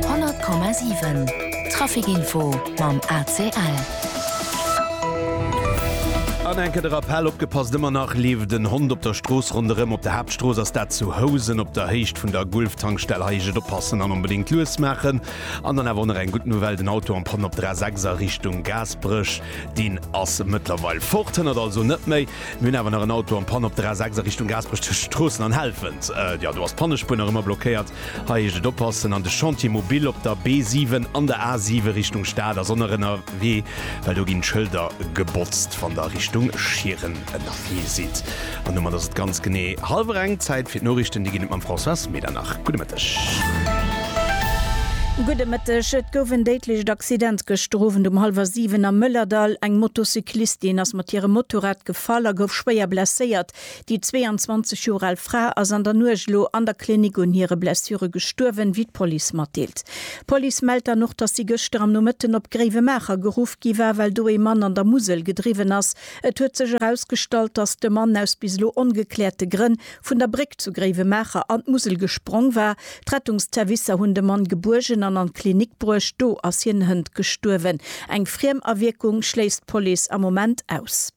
100,7 Traficinfo mam ACL. An enke de Rappell, Opgepasst, ëmmer nach leeft en Hond op der Strooss. Ronderëm op der Haaptstrooss ass dat zu Housen op der Héicht vun der Gulf-Tankstell. Hei heescht et oppassen an onbedéngt lues maachen. An dann awer och nach eng gutt Nouvelle, den Auto am Panne op der A6 a Richtung Gaasperech, deen ass mëttlerweil fort. Hënnert also net méi. Mir hunn awer nach en Auto an Panne op der A6 a Richtung Gaasperech tëscht Stroossen an Helfent. Jo, do ass d'Pannespuer nach ëmmer blockéiert. Hei heescht et oppassen. An de Chantier Mobil op der B7 an der A7 Richtung Stad ass onërennerwee, well do ginn d'Schëlder gebotzt, wann der Richtung Schieren ënnerwee sidd. An domat ass et ganz genee hallwer eng. Zäit fir d'Noriichten, déi ginn et mam Françoise Medernach. Gudde Mëtten. Gudde Mëtteg. Et gouf en déidlecht Accident gëschter Owend um hallwer 7 am Mëllerdall. Eng Motocyclistin ass mat hirem Motorrad gefall a gouf schwéier blesséiert. Déi 22 Joer al Fra ass an der Nuecht elo an der Klinik un hire Blessure gestuerwen, wéi d'Police matdeelt. D'Police mellt dann och, dass si gëschter am Nomëtten op Gréiwemaacher geruff gi war, well do ee Mann an der Musel gedriwwen ass. Et huet sech erausgestallt, dass de Mann aus bis elo ongekläerte Grënn vun der Bréck zu Gréiwemaacher an d'Musel gesprong war. D'Rettungsservicer hunn de Mann gebuergen an an d'Klinik bruecht, do ass hien hënt gestuerwen. Eng Friemawierkung schléisst d'Police am Moment aus.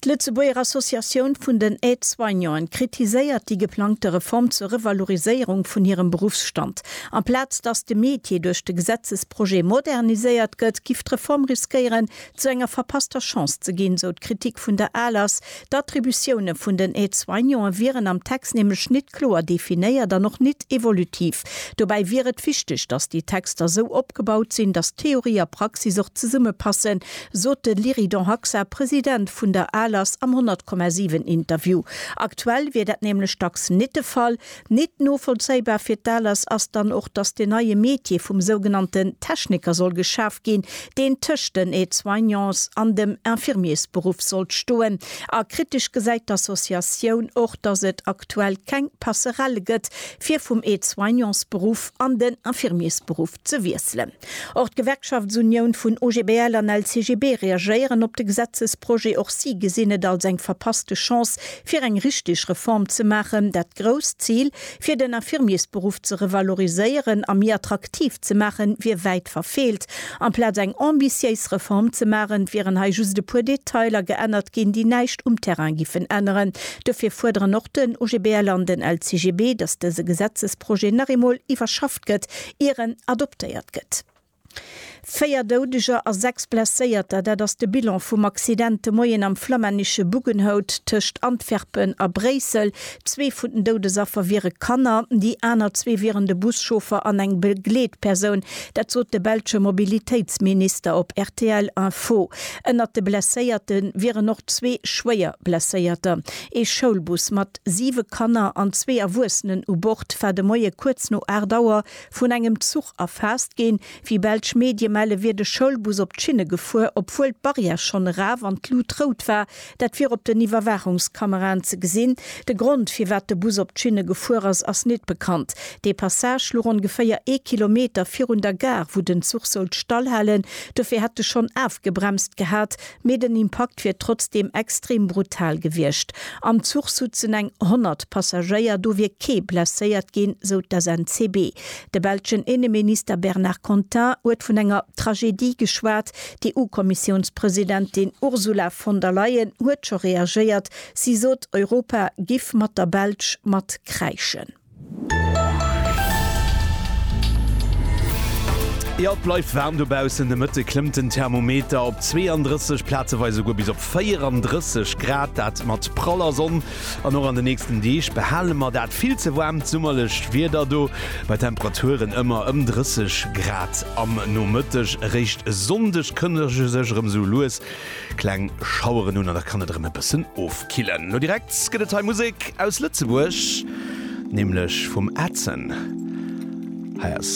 D'Lëtzebuerger Associatioun vun den Aide-soignanten kritiséiert déi geplangte Reform zur Revaloriséierung vun hirem Beruffsstand. Amplaz datt de Metier duerch de Gesetzesprojet moderniséiert gëtt, giff d'Reform riskéieren, zu enger verpasster Chance ze ginn, sou d'Kritik vun der ALAS. D'Attributioune vun den Aide-soignanten wieren am Text nämlech nit kloer definéiert an och nit evolutiv. Dobäi wier et wichteg, datt déi Texter sou opgebaut sinn, datt Theorie a Praxis och zesummepassen, sot de Lyridon Haxa, President vun der ALAS am 100,7 Interview. Aktuell wier dat nämlech dacks nit de Fall, Nit novollzéibar fir d'ALAS ass dann och, dass den neie Metier vum sougenannten Techniker soll geschaf ginn, deen tëscht den Aide-soignants an dem Infirmiersberuff sollt stoen. A kritesch gesäit d'Associatioun och, dass et aktuell keng Passerelle gëtt, fir vum Aide-soignementsberuff an den Infirmiersberuff ze wiesselen. Och d'Gewerkschaftsunioun vun OGBL an LCGB reagéieren op de Gesetzesprojet. Och si gesinn et als eng verpasste Chance, fir eng richteg Reform ze maachen. Dat grousst Zil, fir den Infirmiersberuff ze revaloriséieren a méi attraktiv ze maachen, wier wäit verfeelt. Amplaz eng ambitiéis Reform ze maachen, wieren hei just e puer Detailer geännert ginn, déi näischt um Terrain giffen änneren. Dofir fuerderen och den OGBL an den LCGB, datt dëse Gesetzesprojet nach eemol iwwerschafft gestoppt gëtt, ier en adoptéiert gëtt. Véier Doudeger a sechs Blesséierter, dat ass de Bilan vum Accident de Moien am flammännesche Buggenhout tëscht Antwerpen a Bréissel. Zwee vun den Doudesaffer wiere Kanner, déi aner zwee wieren de Buschauffer an eng Begleetpersoun. Dat sot de belsche Mobilitéitsminister op rtl Info. Ënnert de Blesséierte wieren och zwee schwéier Blesséierter. Ee Schoulbus mat mat siwe Kanner an zwee Erwuessenen u Bord war de Moie kuerz no 8 Auer vun engem Zuch erfaasst ginn. Wéi belsch Medie melle wier de Schoulbus op d'Schinne gefuer, obwuel d'Barrière schonn eraf an d'Lut rout war. Dat wier op den Iwwerwaachungskameraen ze gesinn. De Grond, firwat de Bus op d'Schinne gefuer ass, ass nit bekannt. Dee Passage luch ongeféier ee Kilometer virun der Gare, wou den Zuch sollt stallhalen. Dofir hätt e schonn afgebremst gehat. Mee den Impakt wier trotzdeem extrem brutal gewiescht. Am Zuch sutzen eng 100 Passagéier, do wier kee blesséiert ginn, sou d'SNCB. De belschen Inneminister Bernard Contin huet vun enger Tragedie geschwat. D'EU-Kommissiounspresidentin Ursula von der Leyen huet scho reagéiert. Si sot, Europa giff mat der Belsch mat kräischen. Jo, et bleift waarm dobaussen. De Mëtte klëmmt den Thermometer op 32, plazeweis esouguer bis op 34 Grad. Dat mat praller Sonn. An och an de nächsten Deeg behale mer dat vill ze waarmt summerlecht Wieder do, bei Temperaturen ëmmer ëm 30 Grad am Nomëtteg. Eréischt Sonndeg kënnege sech erëm esou lues Kleng Schaueren un an da kann et erëm e bëssen ofkillen. Lo direkt gëtt et hei Musek aus Lëtzebuerg, nämlech vum Adson. Hei ass